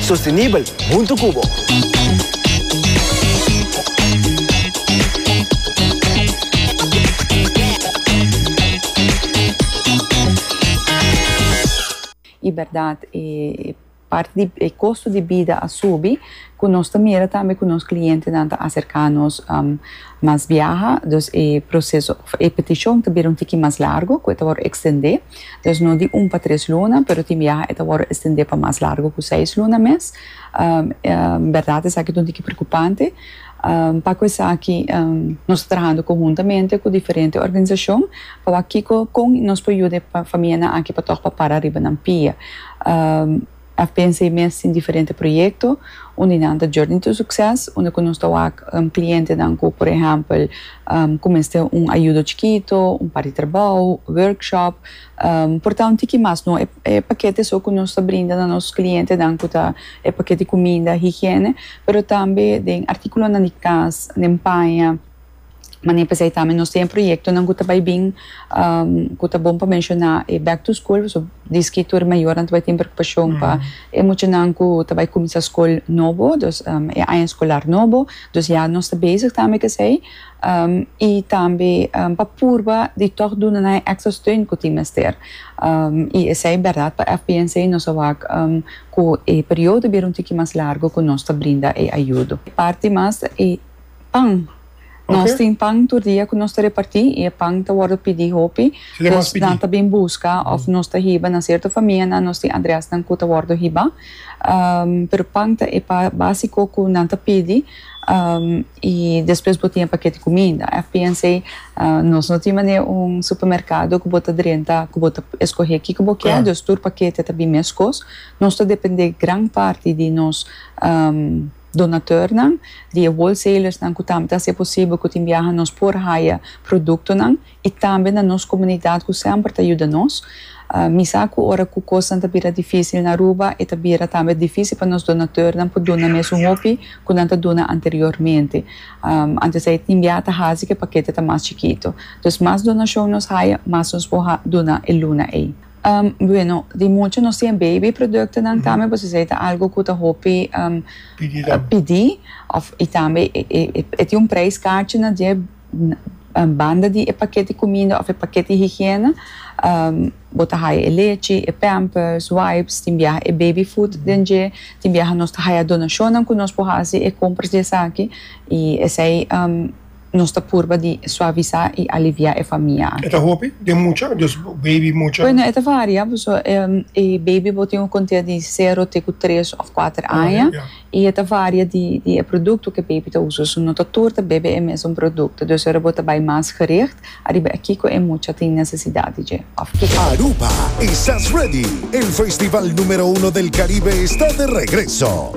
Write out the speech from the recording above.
Sostenibel huntu cu bo. I berdad, e parti di e costo di bida a subi, cu nos ta mira tambe cu nos clientenan ta acerca nos mas biaha, dus e proceso of e peticion ta bira un tiki mas largo, cu e ta wor extende. Dus no di un pa tres luna, pero tin biaha e ta wòrdu estendé pa mas largu ku seis luna mes. Bèrdat esaki ta un tiki preokupante. Pa ku esaki nos ta trahando konhuntamente ku diferente organisashon pa wak kiko kon nos por yuda e famianan aki pa tòg pa para riba nan pia. A pensa e mes tin diferente proyekto unda nan ta journey to succes, unda ku nos ta wak klientenan ku por ehèmpel ku mester un ayudo chikito, un par di trabou, workshop, por ta un tiki mas. No e pakèt esou ku nos ta brinda na nos klientenan ku ta e pakèt di kuminda, higiene, pero tambe den artíkulonan di kas, den paña. Mane pesey tambe nos tin e proyectonan cu ta bay bin, cu ta bon pa menciona e back to school, pasobra diski tur e mayornan ta bay tin preocupacion pa e muchanan cu ta bay cuminsa scol nobo, dus e aña scolar nobo, dus ya nos ta bezig tambe c'esey, y tambe pa purba di toch duna nan e extra steun cu tin mester, y esey berdad pa FPNC, nos a wak cu e periodo bira un tiki mas largo cu nos ta brinda e ayudo. Parti mas e. Pan. Nos tin pan tur dia ku nos ta repartí i e pan ta wòrdu pidí hopi. Nos nan ta bin buska òf nos ta hiba na sierto famianan, nos tin adrèsnan ku ta wòrdu hibá. Pero pan ta e básiko ku nan ta pidi i despues bo tin e pakèt di kuminda. FPNC, Nos no tin manera un supermerkado ku bo ta drenta, ku bo ta eskohé kiko bo kier, dus tur pakèt ta bin meskos. Nos ta dependé gran parti di nos. Donatornan di e wholesalersnan ku tambe ta hasi e posibel ku tin biaha nos por haya produktonan i tambe na nos komunidat ku semper ta yuda nos. Mi sa ku ora ku kosnan ta bira difísil na Aruba e ta bira tambe difísil pa nos donatornan por duna mes un hopi ku nan ta duna anteriormente. Antes ei tin biaha ta hasi ku e pakete ta mas chikitu. Dus mas donashon nos haya, mas nos por duna e luna ei. Bueno, di mucha nos tin e baby productonan tambe pues esei ta algo cu ta hopi pidi of y tambe e tin un prijs cachi na die banda di e paketi cuminda of e paketi higiena, bo ta haya e lechi, e pampers, wipes, tin biaha e baby food den dje, tin biaha nos ta haya donacionnan cu nos por haci e compras di esaki y esei. Nos ta purba di suavisá i aliviá e famia akí. E ta hopi den mucha o dios bo beibi mucha? Bueno, e ta varia, paso e beibi bo tin un kontea di sero te ku tres òf kuater aña i e ta varia di di e produkto ku e beibi ta usa. So no ta tur ta bebe e mesun produkto. Dus ora bo ta bai mas gericht ariba e kiko e mucha tin nesesidat di dje òf kiko. Aruba, Esas Ready? El festival numero uno del Caribe está de regreso!